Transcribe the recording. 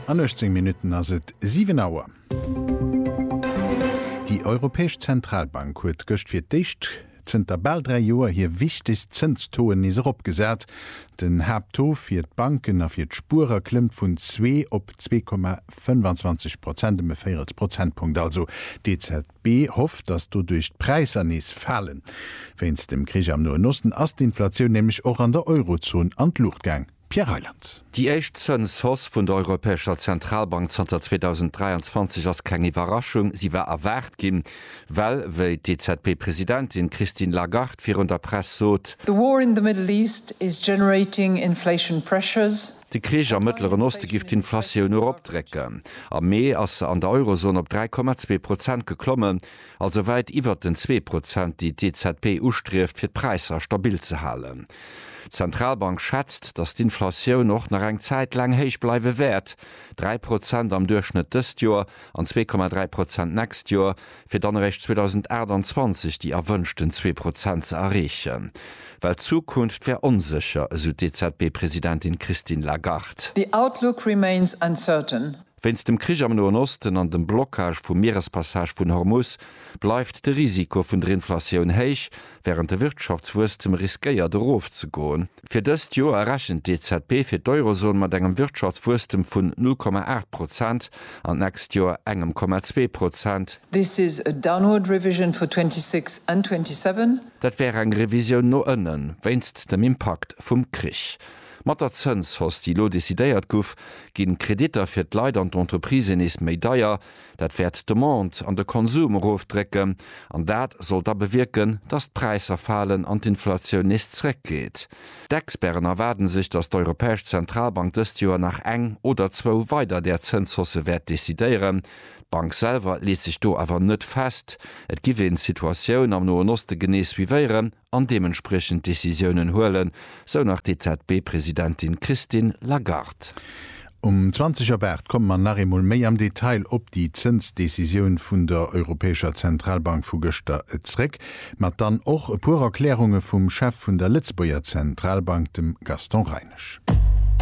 An 18 Minutten ass et 7 Auer. Déi Europäesch Zentralbank huet gëscht fir d'éischt zënter bal dräi Joer hir wichtegst Zënstoen nees erop gesat. Den Haapttaux fir d'Banken a fir d'Spuerer klëmmt vun zwee op zwee Komma 25 Prozent, ëm e Véirels Prozentpunkt also. D'EZB hofft, datt doduerch d'Präisser nees falen. Wéinst dem Krich am Noen Osten ass d'Inflatioun nämlech och an der Eurozon an d'Luucht gaang. Pierre Reyland. Déi éischt Zëns Hausse vun der Europäescher Zentralbank zanter 2023 ass keng Iwwerraschung. Si war erwaart ginn, well, wéi d'EZB Presidentin d'Christine Lagarde virun der Press sot, The war in the Middle East is generating inflation pressures. De Krich am Mëttleren Oste giff d'Inflatioun eropdrécken. Am Mee ass se an der Eurozon op 3,2 Prozent geklommen. also wäit iwwert den zwee Prozent, déi d'EZB ustrieft, fir d'Präisser stabil ze halen. D'Zentralbank schätzt, datt d'Inflatioun och nach eng Zäit laang héich bleiwe wäert, dräi Prozent am Duerchschnëtt dëst Joer an zwee Komma dräi Prozent d'nächst Joer, fir dann eréischt 2028 déi erwënschten zwee Prozent ze erreechen. Well d'Zukunft wär onsécher, esou d'EZB-Presidentin Christine Lagarde. The outlook remains uncertain, Wéinst dem Krich am Noen Osten an dem Blockage vum Mierespassage vun Hormus bleift de Risiko vun der Inflatioun héich, wärend de Wirtschaftswuesstem riskéiert erofzegoen. Fir dëst Joer rechent d'EZB fir d'Eurozon mat engem Wirtschaftswuesstem vun 0,8 Prozent an d'nächst Joer engem 0,2 Prozent. This is a downward revision for 26 and 27. Dat wär eng Revisioun no ënnen, wéinst dem Impakt vum Krich. Mat der Zënshausse, déi elo decidéiert guff, ginn d'Kreditter fir d'Leit an d'Entreprisen nees méi deier. Dat wäert d'Demande an de Konsum erofdrécken an dat soll da bewierken, dass d'Präisser falen an d'Inflatioun nees zréckgeet. D'Experten erwaarden sech, dass d'Europäesch Zentralbank dëst Joer nach eng oder zwou weider där Zënshausse wäert decidéieren. D'Bank selwer leet sech do awer net fest. Et giff een d'Situatioun am Noen Oste genee suivéieren an deementspriechend Decisiounen huelen, sou nach d'EZB-Presidentin Christine Lagarde. Um 20 op 8 komme mer nach eemol méi am Detail op déi Zënsdecisioun vun der Europäescher Zentralbank vu gëschter zréck, mat dann och e puer Erklärunge vum Chef vun der Lëtzebuerger Zentralbank, dem Gaston Reinesch.